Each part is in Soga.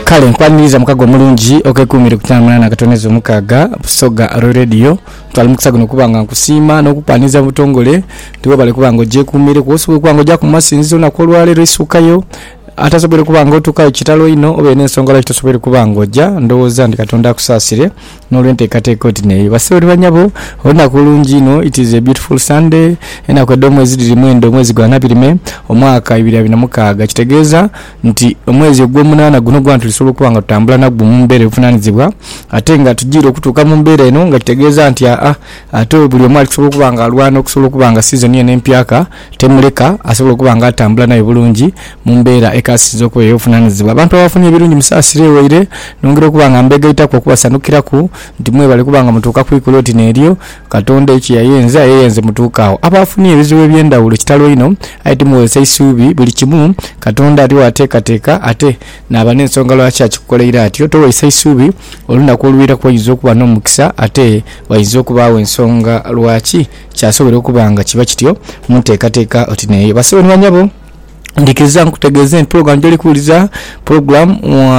Kale nkwaniriza mukago omulungi okeekuumire ku kyaana munaana akatonezo mukaaga, Busoga Radio. Ntwala omukisa guno okuba nga nkusiima n'okukwaniriza mu butongole nti weebale okuba nga ogyekuumireku osobola okuba nga ojaku mu masinzizo olunaku olwaleero eisuukayo atasoboire kuba nga otuukayo kitalo inho obeire n'ensonga lwaki tosoboire kuba nga oja. Ndowooza nti Katonda akusaasire n'olw'enteekateeka oti n'eyo. Bassebo ni bannyabo, olunaku lulungi inho, it is a beautiful Sunday, enaku edh'omwezi dhiri mwenda omwezi gwa Nabirime, omwaka ibiri abiri na mukaaga. Kitegeeza. nti omwezi ogw'omunaana guno gwa tulisobola okuba nga tutambula nagwo mu mbeera ebuvunaanizibwa ate nga tujiire okutuuka mu mbeera eno nga kitegeeza nti aa ate buli omu ali kusobola okuba nga alwana okusobola okuba nga sizoni eno empyaka temuleka asobola okuba nga atambula nayo bulungi mu mbeera ekasinze okuba ey'obuvunaanizibwa. Abantu abafunye ebirungi musaasire waire nongera okuba nga mbeegaitaku okubasanukiraku nti mwebale okuba nga mutuuka ku ikulu oti n'eryo. Katonda ekyo yayenza, yeyenze mutuuka agho. Abo abafunye ebizibu eby'endhawulo kitalo inho, aye timuwozesa isuubi. Buli kimu Katonda ali waateekateeka, ate naaba n'ensonga lwaki akikukoleire atyo. Towozesa isuubi, olunaku olwiraku oinza okuba n'omukisa, ate wainza okubaagho ensonga lwaki kyasobora okuba nga kiba kityo. Mu nteekateeka oti n'eyo, basawo ni banyabo. Ndikiriza nkutegeeze nti pulogulaamu gy'oli kuwuliriza, pulogulaamu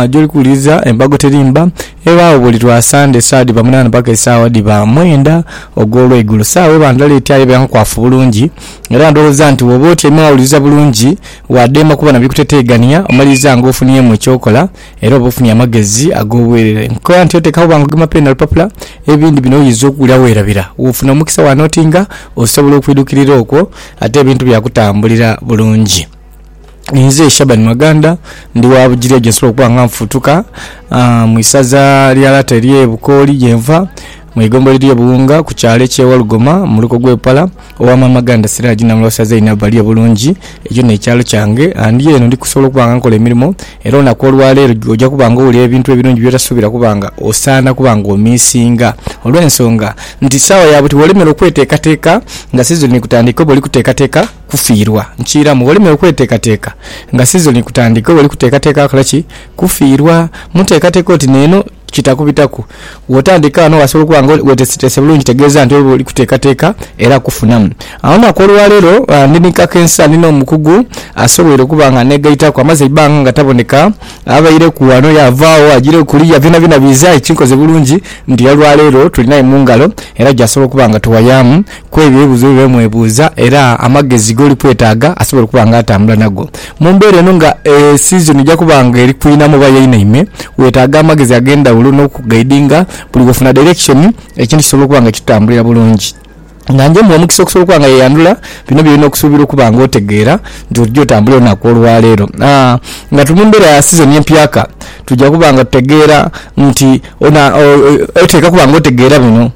gy'oli kuwuliriza Embago Teri Mba ebaagho buli lwa Sande esaawa dhiba munaana paka esaawa dhiba mwenda ogw'olweigulo. Saawa eba ndala etyo aye ebeera nkwafu bulungi era ndhowooza nti bw'oba otyaime wawuliriza bulungi, waadheema kuba na bikuteteeganhia omaliriza ng'ofunyemu eky'okola. Era oba ofunye amagezi ag'obwerere. Nkoba nti oteekagho bwangu ogema peeni na lupapula, ebindi bino oyinza okuwulira weerabira. Wofuna omukisa wa notinga, osobola okwidhukirira okwo ate ebintu byakutambulira bulungi. Inze Shaban Maganda, ndi wa Bugiri eyo gye nsobola okuba nga nfuutuka mu isaza lya lata ery'e Bukooli gye nva. Mu igombolola ly'e Buwunga ku kyalo eky'e Walugoma mu muluka ogw'e Bupala, owa Maama Ganda Siraji Namulwasa Zainab ali obulungi. Ekyo n'ekyalo kyange. Ndi eno ndi kusobola okuba nga nkola emirimo era olunaku olwaleero oja kuba nga owulira ebintu ebirungi by'otasuubira kuba nga osaana kuba nga omiisinga olw'ensonga nti saawa ya buti wolemera okweteekateeka nga sizoni ekutandika oba oli kuteekateeka kufiirwa. Nkiiramu wolemera okweteekateeka nga sizoni ekutandika oba oli kuteekateeka kola ki? Kufiirwa. Muteekateeka oti neeno. kitakubitaku. Bw'otandika ghano wasobola okuba nga weeteeseteese bulungi kitegeeza nti oba oli kuteekateeka era kufunamu. Olunaku olwaleero ndi ni kakensa ndi n'omukugu asoboire okuba nga anneegaitaku amaze eibanga nga taboneka. Abaireku ghano yaavaagho agiireku kuliya byonabyona biiza aye kinkoze bulungi nti olwaleero tulinaye mu ngalo era gy'asobola okuba nga tuwayaamu. ku ebyo ebibuuzo bye mwebuuza era amagezi g'oli kwetaaga asobola okuba nga atambula nago. Mu mbeera eno nga sizoni eja kuba nga eri kwinhamu oba yainhaime, weetaaga amagezi ag'endhaghulo n'okukugaidinga buli wofuna dairekishoni ekintu kisobole okuba nga kitutambulira bulungi. Nga njemuwa omukisa okusobola okuba nga yeyandhula bino by'olina okusuubira okuba nga otegeera nti ojja otambula olunaku olwaleero. Nga tuli mu mbeera ya sizoni empyaka, twidha kuba nga tutegeera nti oteekwa okuba nga otegeera bino.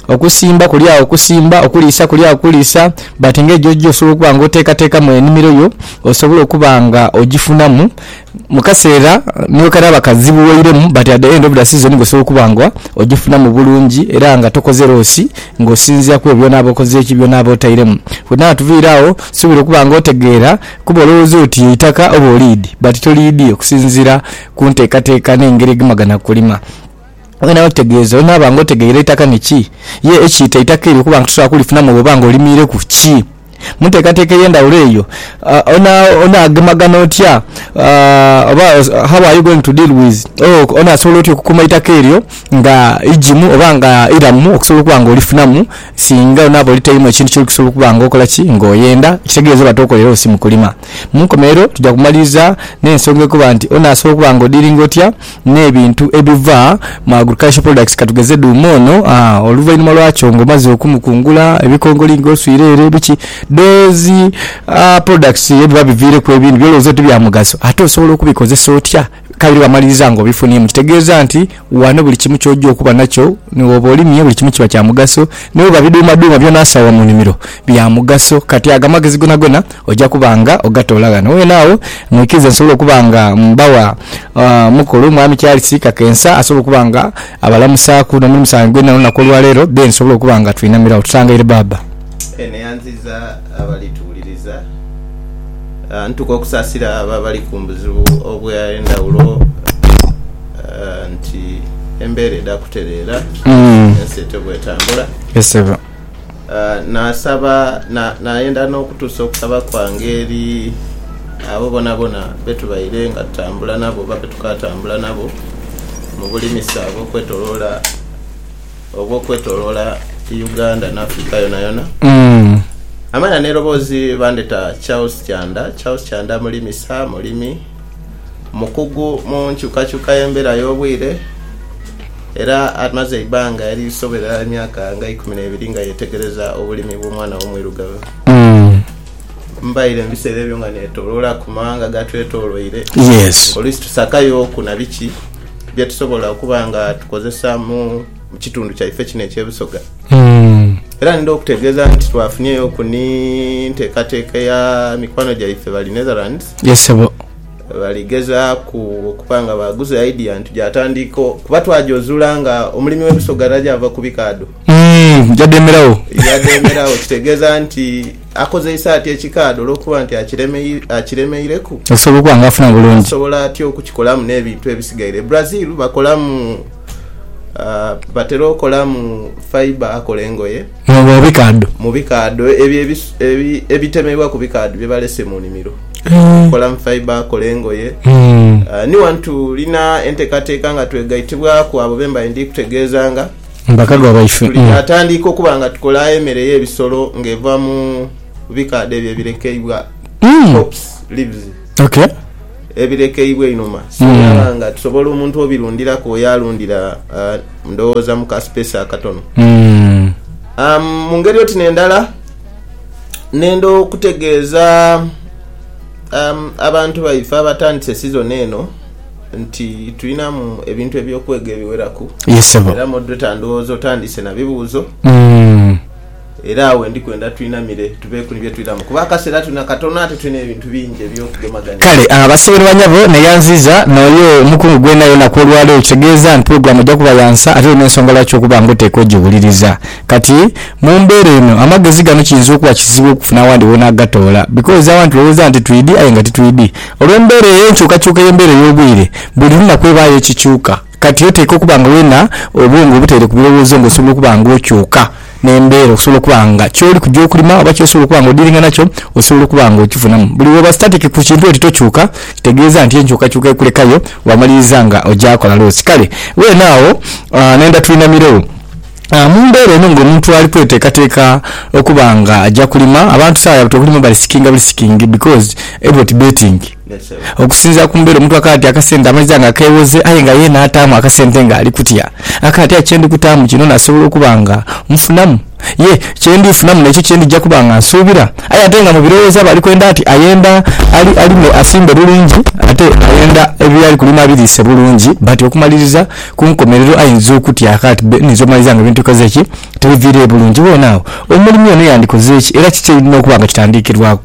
Okusimba kuli agho kusimba, okuliisa kuli agho kuliisa but ng'egyo gyo osobola okuba nga oteekateekamu enimiro yo osobole okuba nga ogifunamu mu kaseera ni bwe kanaaba kazibughoiremu but at the end of the season ng'osobola okuba nga ogifunamu bulungi era nga tokoze loosi ng'osinziira ku ebyo by'onaaba okoze ki, by'onaaba otairemu. Bwetunaaba tuviire agho nsuubira okuba nga otegeera kuba olowooza oti eitaka oba oliidi but toliidi okusinziira ku nteekateeka n'engeri egema gana kulima. Olina otegeeza, olina oba nga otegeire eitaka ni ki, ye ekiita eitaka eryo kuba nga tosobola kulifunamu oba nga olimiireku ki. Mu nteekateeka ey'endhaghulo eyo, onaagemagana otya oba how are you going to deal with or onaasobola otya okukuuma eitaka eryo nga igimu oba nga iramu okusobola okuba nga olifunamu singa onaaba olitairemu ekintu kyoli kusobola okuba nga okola ki, nga oyenda, ekitegeeza oba tokoleregho si mu kulima. Mu nkomerero tuja kumaliriza n'ensonga ekoba nti onaasobola okuba nga odiringa otya. n'ebintu ebiva mu agricultural products katugeze dhuuma ono oluvainhuma lwakyo nga omaze okumukungula ebikongoli nga oswire ere biki those products ebiba biviireku ebindhi byolowooza oti bya mugaso ate osobola okubikozesa otya kabiri wamaliriza nga obifuniemu kitegeeza nti ghano buli kimu ky'oja okuba nakyo ni bwooba olimye buli kimu kiba kya mugaso ni bwooba bidhuumadhuuma byona asaawa mu nimiro bya mugaso kati ago amagezi gonagona Oja kuba nga ogatoola ghano weena agho, mwikirize nsobole okuba nga mbawa mukulu Mwami Charles Kakensa asobole okuba nga abalamusaaku n'omuli musango gwena olunaku olwa leero, then tusobole okuba nga twinamirawo. Tutangaire Baaba. Eno eyanziiza abali tuwuliriza. Ntuka okusasira abo abali ku buzibu obwe ndhawulo nti embera edha kutereera, ensi etyo bwetambula. Naasaba, na, naayenda n'okutuusa okusaba kwange eri abo boonaboona be tubaire nga tutambula nabo oba be tukaatambula nabo mu bulimisa obw'okwetoloola, obw'okwetoloola Uganda n'Africa yonayona. Amala n'eroboozi bandheta Charles Kyanda. Charles Kyanda mulimisa, mulimi, mukugu mu nkyukakyuka y'embeera y'obwire. Era amaze eibanga erisobera emyaka nga eikumi n'ebiri nga yeetegereza obulimi bw'omwana we omwirugavu. Mbaire mu biseera ebyo nga neetoloola ku mawanga gatwetoloire, oluisi tusakayooku na biki bye tusobola okuba nga tukozesa mu kitundu kyaife kino eky'e Busoga. Era nidha okutegeeza nti twafunyeyoku ni nteekateeka ya mikwano gyaife Balinetherlands. Baligezaaku okuba nga baaguza idea nti gyatandika kuba twajozuula nga omulimi w'ebiso ghalala gyava ku bikaadho. Yadheemeragho. Yadheemeragho kitegeeza nti akozeisa atya ekikaadho olw'okuba nti akiremeireku? Asobola okuba nga afuna bulungi. Asobola atya okukikolamu n'ebintu ebisigaire? Brazil bakolamu, batera okolamu fibre akola engoye. Mu bikaadho. Mu bikaadho. Ebyo ebitemebwa ku bikaadho bye balese mu nimiro. Kolamu fibre, kola engoye. Ni wano tulina entekateka nga twegaitibwaku abo be mbaire ndi kutegeezanga. Bakadwa baife. Tulyatandiika okuba nga tukola emere y'ebisolo nga eva mu bikaadho ebyo ebirekeibwa, crops, leaves. ebirekeibwa einhuma singa aba nga tusobola omuntu obirundhiraku oyo alundhira ndhoghoza mu ka space akatono. Mu ngeri oti n'endala nenda okutegeeza abantu baife abatandise sizoni eno nti tulinamu ebintu eby'okwega ebiweraku era moderator ndhoghoza otandise na bibuuzo. Era awe ndi kwenda twinamire tubeeku ni bye twiramu kuba akaseera tulina katono ate tulina ebintu bingi eby'okugemagania. Kale basawo ni banyabo, neyanziiza n'oyo omukungu gwonayona ku olwaleero, ekitegeeza nti pulogulaamu ejja kuba ya nsa ate erina ensonga lwaki okuba nga oteekwa ogiwuliriza. Kati mu mbeera eno amagezi gano kiyinza okuba kizibu okufuna awandi w'onaagatoola because awa nitulowooza nti twidi aye nga titwidi olw'embeera eyo. Enkyukakyuka y'embeera ey'obwire buli lunaku ebaayo ekikyuka. Kati oteekwa okuba nga weena obwongo obuteere ku birowoozo nga osobola okuba nga okyuka n'embeera okusobola okuba nga kyoli kuja okulima oba kyosobola okuba nga odiiringa nakyo osobola okuba nga okifunamu. Buli wooba static ku kintu oti tokyuka kitegeeza nti enkyukakyuka ekulekayo wamaliriza nga oja kola loosi. Kale weena agho nenda twinamiregho mu mbeera eno nga omuntu ali kweteekateeka okuba nga aja kulima. Abantu sawa ya buti okulima bali sikinga bulisikingi because everybody betting. Okusinziira ku mbeera omuntu akaatya akasente amaiza nga keewoze aye nga yeena ataamu akasente ng'ali kutya. Akaatya kye ndi kutaamu kino nasobola okuba nga nfunamu? Ye kye ndi funamu n'ekyo kye ndija kuba nga nsuubira? Aye ate nga mu birowoozo aba ali kwenda ati ayenda alime asimbe bulungi ate ayenda by'ali kulima abiriise bulungi but okumaliriza ku nkomerero ayinza okutya akaati bbe nninze omaliriza nga ebintu bikoze ki? Tibiviireyo bulungi. Weena agho omulimi ono yandikoze ki era kiki ekirina okuba nga kitandiikirwaku?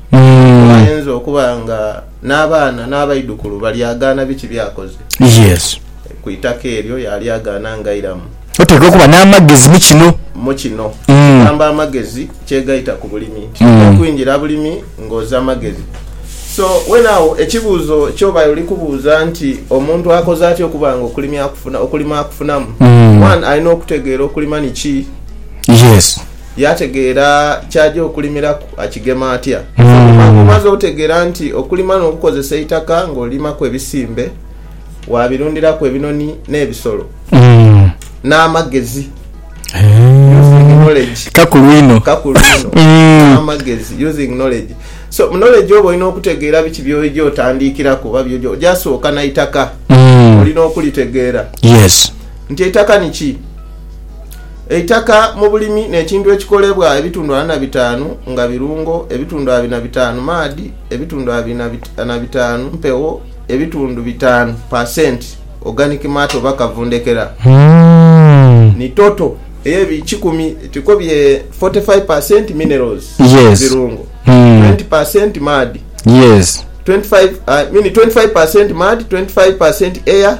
Ayinza okuba nga n'abaana n'abaidhukulu balyagaana biki by'akoze ku itaka eryo, yaalyagaana ngairamu. Oteekwa okuba n'amagezi mu kino. Mu kino. Gamba amagezi kyegaita ku bulimi. Titwidha kwingira bulimi ng'oza magezi. So, weene agho ekibuuzo ky'oba oli kubuuza nti omuntu akoze atya okuba nga okulima akufunamu? One, alina okutegeera okulima ni ki. yaategeera ky'aja okulimiraku akigema atya? Oluvannyuma ng'omaze otegeera nti okulima n'okukozesa eitaka ng'olimaku ebisimbe, waabirundiraku ebinoni n'ebisolo n'amagezi, using knowledge. Kakulu inho. Kakulu inho. N'amagezi, using knowledge. So, mu knowledge oba olina okutegeera biki by'oja otandikiraku oba by'oja oja sooka na itaka. Olina okulitegeera nti eitaka ni ki? Eitaka mu bulimi n'ekintu ekikolebwa ebitundu ana na bitaanu nga birungo, ebitundu abiri na bitaanu maadhi, ebitundu abiri na bitaanu mpewo, ebitundu bitaanu pa senti organic matter oba kavundhekera, ni toto ey'ebikikumi etiriko bye forty five pa senti minerals, birungo, twenty pa senti maadhi, twenty five pa senti air,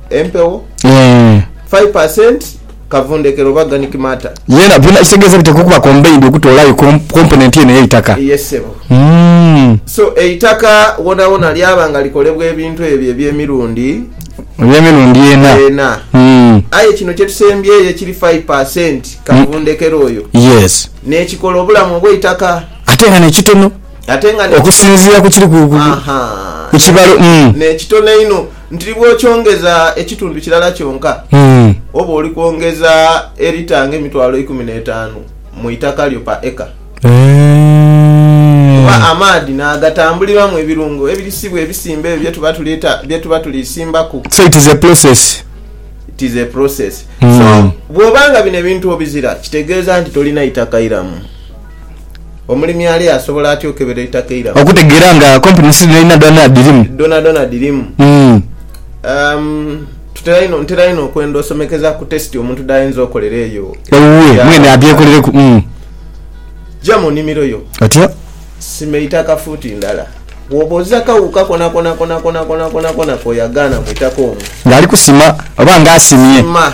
empewo Eeh. 5 per cent kavundhekero oba organic matter. Yena byona ekitegeza biteekwa okuba combined okutoolayo com, component yena ey'eitaka. Ye ssebo. Umm. So eitaka wonawona lyaba nga likolebwa ebintu ebyo eby'emirundi. Eby'emirundi ena. Ena. Umm. Aye kino kye tusembyeyo ekiri 5 per cent kavundhekero oyo. Yes. N'ekikola obulamu obw'eitaka. Ate nga n'ekitono. okusinziira ku kiri ku kibalo. N'ekitono einho nti bw'okyongeza ekitundu kirala kyonka, oba oli kwongeza erita ng'emitwalo eikumi n'etaanu mu itaka lyo pa eka. Kuba amaadhi naagatambuliramu ebirungo ebirisibwa ebisimba ebyo bye tuba tuli simbaku. So it is a process. It is a process. So bw'oba nga bino ebintu obizira, kitegeeza nti tolina itaka iramu. Omulimi ali asobola atya okukebera eitaka eiramu? Okutegeera nga komponensi dhonadhona dhirimu. Dhonadhona dhirimu. Ntera inho okwenda osomekeza ku tesiti omuntu dhayinza okolera eyo. Ewuwe mwene adhekolereku. Ja mu nimiro yo. Otyo. Sima eitaka fuuti ndala. Bwoba oza akawuuka konakona konakonakona konakonakona koyagaana mu itaka omwo. Nga ali kusima oba nga asimye. Sima.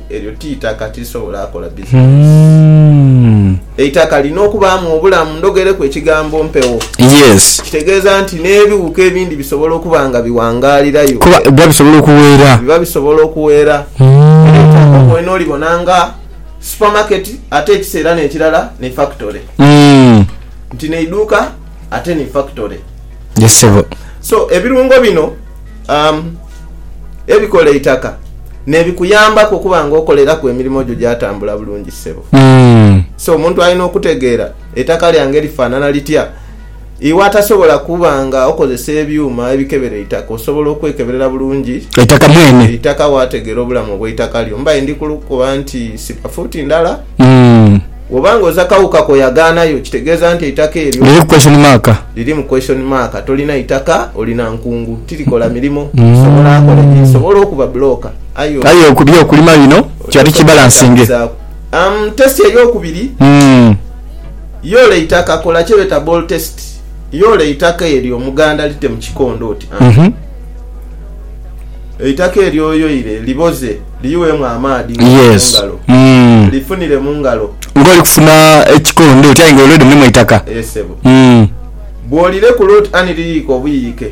Eryo ti itaka, tirisobola kola bizinensi. Eitaka lirina okubaamu obulamu. Ndhogereku ekigambo mpewo. Kitegeeza nti n'ebighuka ebindi bisobola okuba nga biwangaalirayo. Kuba biba bisobola okuweera. Biba bisobola okuweera. Eitaka okwene olibona nga supamaketi ate ekiseera n'ekirala ni fakitole. Nti n'eiduuka ate ni fakitole. So, ebirungo bino. ebikola eitaka nebikuyambaku okuba nga okoleraku emirimo gyo gyatambula bulungi ssebo. So omuntu alina okutegeera eitaka lyange lifanana litya iwe atasobola kuba nga okozesa ebyuma ebikebera eitaka osobola okwekeberera bulungi eitaka wategera obulamu obweitaka lyo. Mbaire ndikukoba nti siba fuuti ndala. Bw'oba nga oza kawuka k'oyagaanayo, kitegeeza nti eitaka eryo. Liriku question mark. Lirimu question mark. Tolina itaka, olina nkungu. Tirikola mirimo. Tisobola kola egi nsobola okuba bulooka. Aye. Aye eby'okulima bino kiba tikibalansinge. Umm test ey'okubiri, yoola eitaka, kola kyebeeta ball test. Yoola eitaka eryo omuganda lite mu kikondo oti, Aah, eitaka eryo oyoile liboze. Liyughemu amaadhi nga oli mu ngalo. Lifunire mu ngalo. Nga oli kufuna ekikondo oti aye nga olwo limulimu eitaka. Ee sebo. Bw'olirekula oti ani liyiyike obuyiyike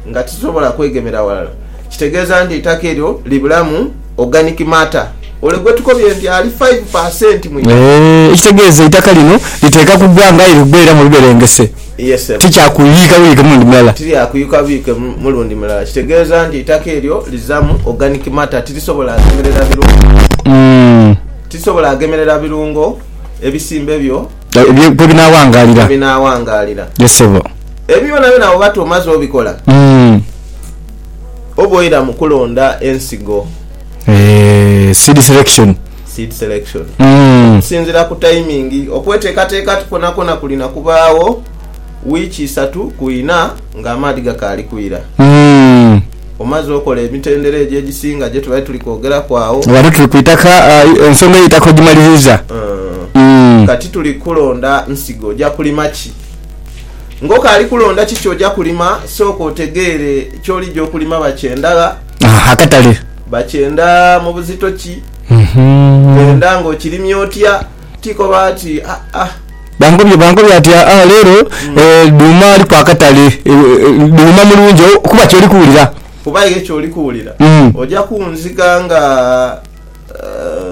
nga tirisobola kwegemera walala, kitegeeza nti eitaka eryo libulamu organic matter ole gwe tukobye nti ali five per cent mu itaka. Ee, ekitegeeza eitaka lino liteeka kugwa nga aye ligwa era mu biberengese. Ye ssebo. Tikyakuyuyika buyuyike mulundi mulala. Tiryakuyuyika buyuyike mulundi mulala. Kitegeeza nti eitaka eryo lizaamu organic matter, tirisobola ghemerera birungo. Tirisobola ghemerera birungo ebisimbe byo. Kwebinaawangaalira. Kwebinaawangaalira. Ye ssebo. Ebyo byonabyona bwoba ti omaze obikola, oba oira mu kulonda ensigo. Eeh, seed selection. seed selection. Okusinzira ku tayimingi, okweteekateeka kwonakona kulina kubaagho wiiki isatu ku ina ng'amaadhi gakaali kwira. Omaze okola emitendera egyo egisinga gye tubadde tuli kwogeraku agho. Ghano tuli ku itaka, ensonga ey'eitaka ogimaliriza. Kati tuli kukulonda nsigo. Oja kulima ki? Ng'okaali kulonda ki ky'oja kulima, sooka otegeere ky'olija okulima bakye ndagha. akatale. Bakyenda mu buzito ki? Kyenda ng'okirimye otya? Ti koba ati, Aa. Bankobye, bankobye ati, Aa, leero dhuuma aliku akatale. Dhuuma mulungi kuba ky'oli kuwulira. Kuba aye ky'oli kuwulira. Oja kunziga nga,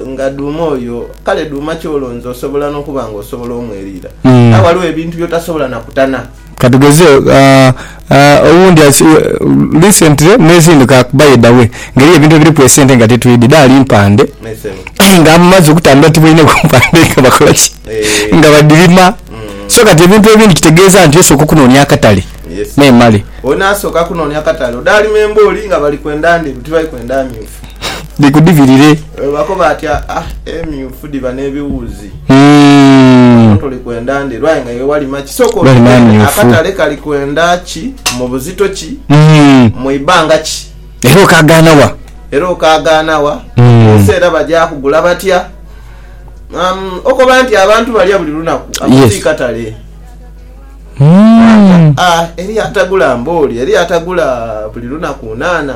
nga dhuuma oyo. Kale dhuuma ky'olonze osobola n'okuba ng'osobola omweriira. Aye ghaligho ebintu by'otasobola na kutana. Ka tugeze, owundi ati, Recently nezinduka ku by the way nga eriyo ebintu ebiriku esente nga titwidhi, dhaali mpande aye nga amaze okutambula tibaine ku mpande nga bakola ki? Nga badhirima. So kati ebintu ebindi kitegeeza nti osooka okunoonia akatale memale. Olina sooka kunoonia katale odhaalima embooli nga bali kwenda ndheru tibali kwenda myufu. dhikudhibirire. Bwebako bati aah emyufu dhiba nebiwuuzi hmm. Ate oli kwenda nde lwaye nga iwe walima ki? Sooka otegeere akatale kali kwenda ki, mu buzito ki, hmm. mu ibanga ki era okagaana wa era okagaana wa hmm. ensi era baja kugula batya um, okoba nti abantu balya buli lunaku akoti katale ah, eri atagula mbooli eri atagula buli lunaku nana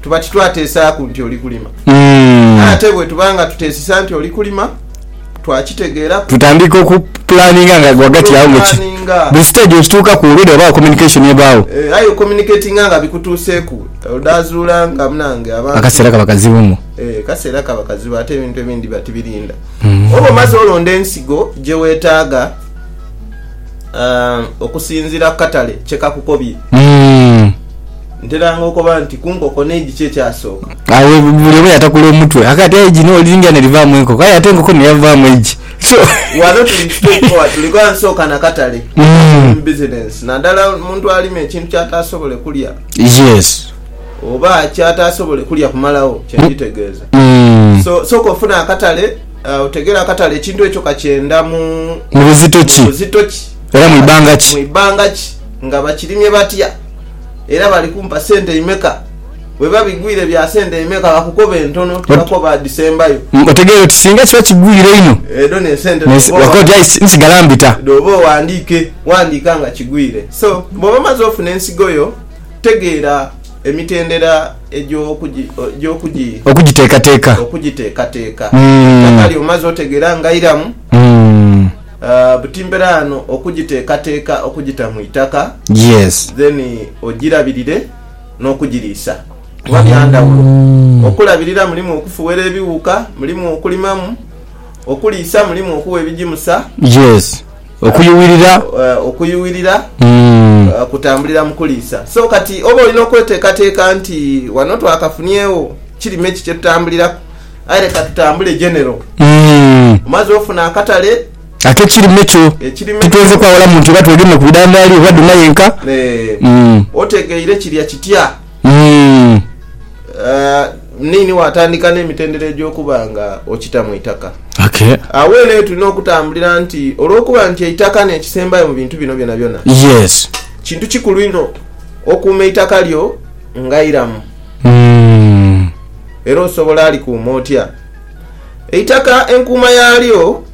tuba titwateesaaku nti oli kulima. Aye ate bwe tuba nga tuteesisa nti oli kulima, twakitegeeraku. Tutandika okupulaninga nga ghagati agho nga ki, buli siteegi bwe kituukaku already ghabagho communication ebagho. Eeh aye ocommunicatinga nga bikutuuseeku odhaazuula nga munange abantu. Akaseera kaba kazibu muh. Eeh akaseera kaba kazibu ate ebintu ebindi biba tibirinda. Oba omaze olonda ensigo gye weetaaga okusinziira ku katale kye kakukobye. Nteranga okoba nti kunkoko neidhi ki ekyasooka? Agho buli omu yatakula omutwe aka ati eidhi no liringa nerivaamu enkoko aye ate enkoko neyavaamu eidhi so. Ghano tuli mu stage four tuli gha nsooka na katale mu business nadala omuntu alima ekintu kyatasobole kulya Yes. oba kyatasobole kulya kumalagho kyenditegeeza so sooka ofune akatale otegere akatale ekintu ekyo kakyenda mu Mu buzito ki buzito ki era mu ibanga ki. mu ibanga ki nga bakirimye batya. era bali kumpa sente imeka? Bweba bigwire bya sente imeka bakukoba entono tibakoba dhisembayo. Umm otegeera oti singa kiba kigwire inho Edho nesente wakoba oti aye nsigala mbita. Dhooba oghandiike, ghandiika nga kigwire. So bwoba omaze ofuna ensigo yo tegeera emitendera egy'okugi. Okugiteekateeka. Okugiteekateeka. Umm. Eitaka lyo omaze otegeera nga iramu. Umm. Buti mbera ano okujiteekateka okujita mu itaka then ojirabirire n'okujiriisa kuba bya ndhawulo. Okulabirira mulimu okufuwera ebiwuuka, mulimu okulimamu, okuliisa mulimu okuwa ebijimusa, okuyuwirira kutambulira mu kuliisa. So kati oba olina okweteekateeka nti wano twakafunyeegho kirime ki kyetutambuliraku. Aye leka tutambule Genero. Omaze ofuna akatale? Ak'ekirime kyo. Titwenze kwawula muntu oba twegema ku bidhandaali oba dhuma yenka. Otegeire kiria kitya? Muniini wo atandika n'emitendera egy'okuba nga okita mu itaka. Agho eno ye tulina okutambulira nti olw'okuba nti eitaka n'ekisembayo mu bintu bino byonabyona, kintu kikulu inho okuuma eitaka lyo nga iramu. era osobola alikuuma otya? Eitaka enkuuma yaalyo.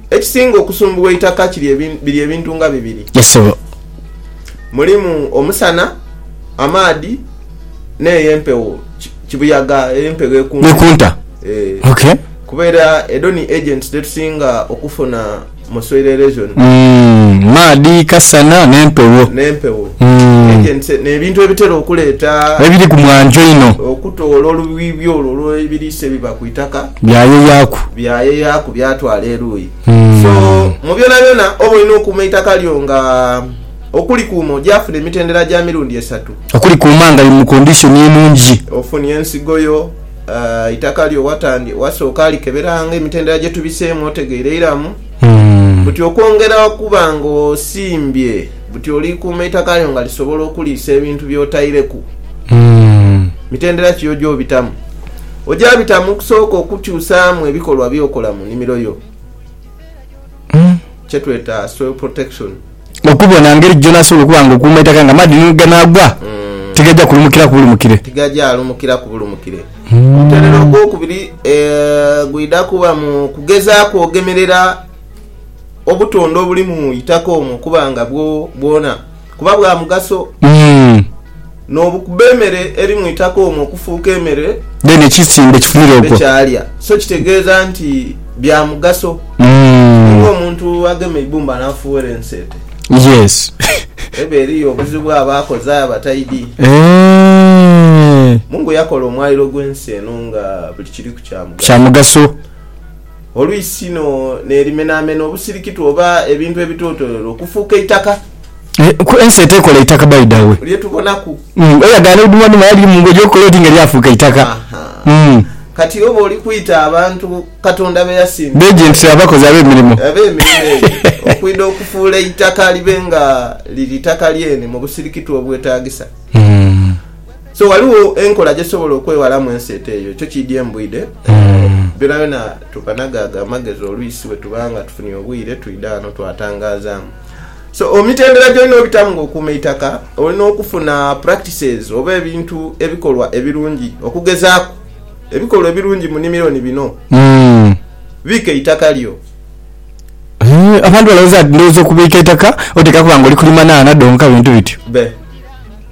Ekisinga okusumbugha eitaka biri ebintu nga bibiri. Mulimu omusana, amaadhi n'eyo empewo, kibuyaga, eyo empewo ekunta. Ekunta, ee. Ok. Kuba era edho ni agents dhetusinga okufuna. Muswere region. Mm, maadhi, kasana n'empewo. N'empewo. Mm. Agents n'ebintu ebitera okuleeta. Ebiri ku mwanjo inho. Okutoola olubiibi olwo olw'ebiriisa ebiba ku itaka. Byayeyaaku. Byayeyaaku byatwala eruuyi. Mm. So, mu byonabyona oba olina okuuma eitaka lyo nga okulikuuma ogyafuna emitendera gya mirundi esatu. Okulikuuma nga liri mu condition enungi. Ofunye ensigo yo. eitaka lyo wasooka likeberanga emitendera gye tubiseemu otegeire iramu buti okwongera okuba ng'osimbye buti olikuuma eitaka lyo nga lisobola okuliisa ebintu by'otaireku. Mitendera ki y'ogy'obitamu? Oja bitamu okusooka okukyusaamu ebikolwa by'okola mu nimiro yo, kyetweta soil protection. okubona ngeri ki gy'onaasobola okuba nga okuuma eitaka nga amaadhi ni gheganaagwa tigaja kulumukiraku bulumukire. Tigaja alumukiraku bulumukire. Omutendera ogwokubiri gwidha kuba mu kugezaaku ogemerera obutonde obuli mu itaka omwo okuba nga bwo bwona kuba bwa mugaso. n'obukuba emere eri mu itaka omwo okufuuka emere ekisimbe kyalya. So kitegeeza nti bya mugaso. Ni ng'omuntu agema eibumba n'afuuwera enseete. Eba eriyo obuzibu aba akoze aye aba taidhi. Mungu yakola omwaliro gw'ensi eno nga buli kiriku kya mugaso. Olw'isino n'erimenaamena obusirikitu oba ebintu ebitootolere okufuuka eitaka. Ensi etekola eitaka by the way. Lye tubonaku. Eyagaana eidumaduma yali mu ngoye okukola oti nga lyafuuka eitaka. Aha. Kati oba oli kwita abantu Katonda be yasinzibwa. Beeje nti tuli abakozi ab'emirimo. Ab'emirimo egyo okwidha okufuula eitaka libe nga liri itaka lyene mu busirikitu obwetaagisa. So ghaligho enkola gyesobola okwewalamu enseeta eyo. Ekyo kiidye mu bwide buno. Byonayona tukanaga ago amagezi olwisi bwetuba nga tufunie obwire twidha ghano twatangazaamu. So emitendera gyolina obitamu nga okuuma eitaka, olina okufuna practices oba ebintu ebikolwa ebirungi. Okugezaaku, ebikolwa ebirungi mu nimiro ni bino, Biika eitaka lyo. Abantu balowooza nti ndhooza okubiika eitaka otekaaku nga oli kulima nhaana dhonka bintu bityo. Be.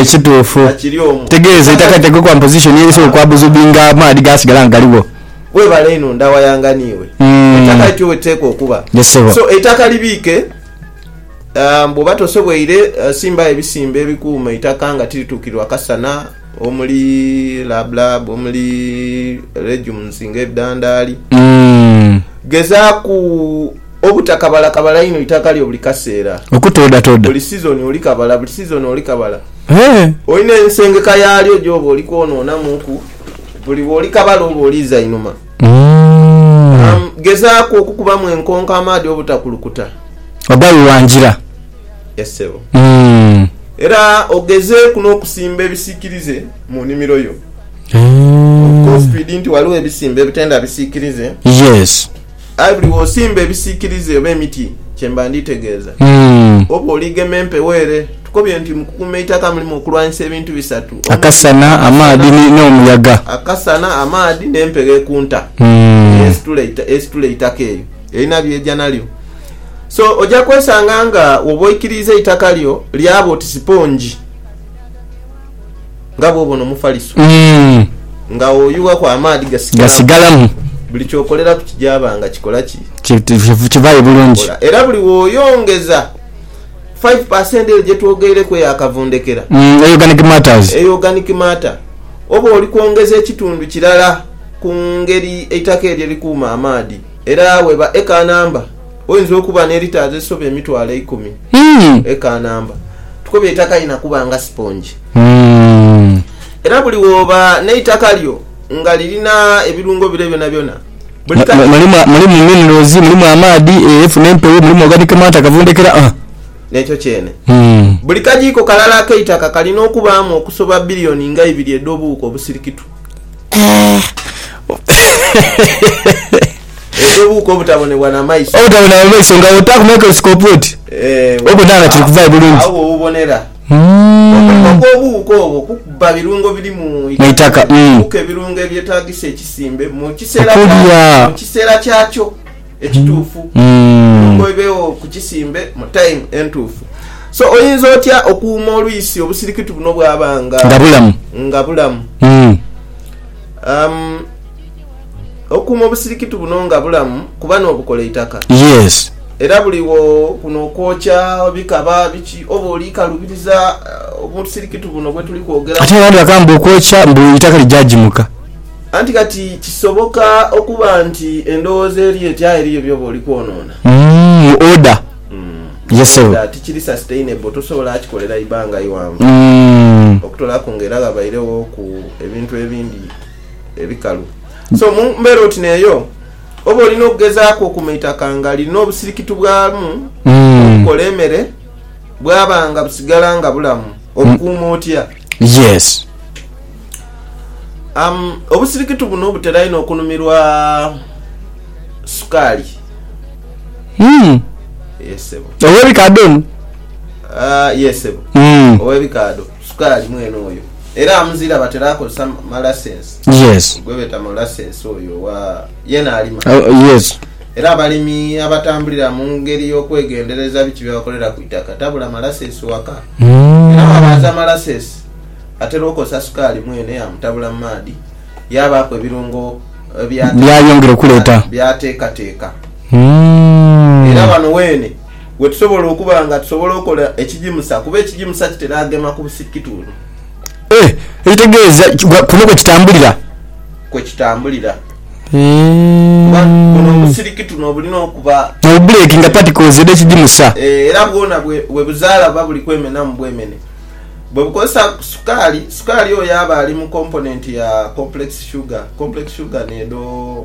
Ekituufu. Tegeeza eitaka litekweku one position eri so kwa buzubinga amaadhi gaasigala nga galigho. Webale inho ndawayanga niiwe. Eitaka lityo weliteekwa okuba. So eitaka libiike bwoba tosoboire simbawo ebisimbe ebikuuma eitaka nga tirituukirwa kasana omuli lab lab, omuli legumes nga ebidandaali. Gezaaku. Obutakabalakabala inho itaka lyo buli kaseera. Okutoodhatooda. Buli sizoni oli kabala, buli sizoni oli kabala. Olina ensengeka yaalyo gy'oba oli kwonoonamuuku, buli bw'oli kabala oba oliiza inhuma. Gezaaku okukubamu enkonko amaadhi obutakulukuta. Ogawuwangira. Yes ssebo. Era ogezeeku n'okusimba ebisiikirize mu nnimiro yo. Okofiidi nti ghaligho ebisimba ebitenda bisiikirize. Yes. Aye buli w'osimba ebisiikirize oba emiti kye mba nditegeeza. Oba oligema empewo ere. Tukobye nti mu kukuuma eitaka mulimu okulwanyisa ebintu bisatu, omuli, Akasana, amaadhi ni, n'omuyaga. Akasana, amaadhi, n'empewo ekunta eyo esitula, esitula eitaka. Eyo erina by'eja nalyo. So, oja kwesanga nga woba oikiriiza eitaka lyo lyaba oti sipongi. Nga bw'obona Omufaliso nga oyughaku amaadhi gasigalamu, buli ky'okoleraku kijaaba nga kikola ki? Kivaayo bulungi. Era buli w'oyongeza five per cent eyo gye twogeireku eya kavundhekera, eyo organic matter, oba oli kwongeza ekitundu kirala ku ngeri eitaka eryo erikuuma amaadhi. Era weeba eka namba. Oinza okuba ne litres ezisoba emitwalo eikumi e Kanamba. Tukobye eitaka lina kuba nga sipongi. Era buli woba neitaka lyo nga lirina ebirungo bire byonabyona, buli kale. Mulimu minerals, mulimu amaadhi, efu n'empewo, mulimu organic matter, kavundhekera a. N'ekyo kyene. Buli kagiiko kalala ak'eitaka kalina okubaamu okusoba billion nga ibiri edh'obuwuka obusirikitu. Eky'obuwuka obutabonebwa na maiso. Obutabonebwa na maiso nga wotaaku microscope oti Eeh, obona nga kiri kuvaayo bulungi. Agho wobubonera. Omulimu Umm. gw'obuwuka obwo kukubba birungo biri mu Mu itaka itaka lino umm. kukuka ebirungo ebyetaagisa ekisimbe mu kiseera kya Okulya. mu kiseera kyakyo ekituufu, Umm. ebirungo bibeegho ku kisimbe mu time entuufu. So oyinza otya okuuma olwisi obusirikitu buno bwaba nga Nga bulamu. nga bulamu? Umm. Umm. Okuuma obusirikitu buno nga bulamu kuba n'obukola eitaka. Yes. Era buli wo kuno okwokya bikaba biki oba oli kalubiriza obusirikitu buno bwe tuli kwogeraku. Ate abandi bakaba mbu okwokya mbu eitaka lija gimuka. Anti kati kisoboka okuba nti endowooza eri eti aye eriyo byoba oli kwonoona. Mu order. Yes ssebo. Oba tikiri sustainable tosobola kikolera ibanga ighanvu. Okutolaku nga era ghabairegho ku ebintu ebindi. ebikalu. So mu mbeera oti n'eyo, oba olina okugezaaku okuma eitaka nga lirina obusirikitu bwamu obukola emere bwaba nga busigala nga bulamu. Obukuuma otya? Yes. Am, obusirikitu buno butera inho okunumirwa sukaali. Mm. Yes, sebo. Ow'ebikaadho ono? Ah, yes, sebo. Mm. Ow'ebikaadho. Sukaali mwene oyo era amuzira batera akozesa ma lasensi Yes. gwebeta molassess oyo owa yena alima Oh yes. era abalimi abatambulira mungeri yokwegendereza biki byebakolera ku itaka tabula malassess waka era bwabaaza malassess atera okozesa sukaali mwene yamutabula mu maadhi yabaaku ebirungo Byayongera okuleeta. byatekateka era Uhmm. wano weene. we tusobola okuba nga tusobola okola ekigimusa kuba ekigimusa kitera gema ku busikitundu. E. Ekitegeeza kuno kwe kitambulira. Kwe kitambulira. E. Kuba buno obusirikitunu obulina okuba. N'obubuleekinga particles edh'ekigimusa. E. Era bwona bwe buzaala buba buli kwemenamu bwemene. Bwe bukozesa sukaali, sukaali oyo aba ali mu komponenti ya complex sugar. Complex sugar n'edho.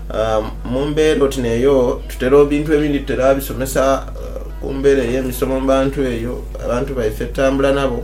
Mu mbeera oti n'eyo, tutera ebintu ebindi tutera bisomesa ku mbeera ey'emisomo mu bantu eyo abantu baife tutambula nabo.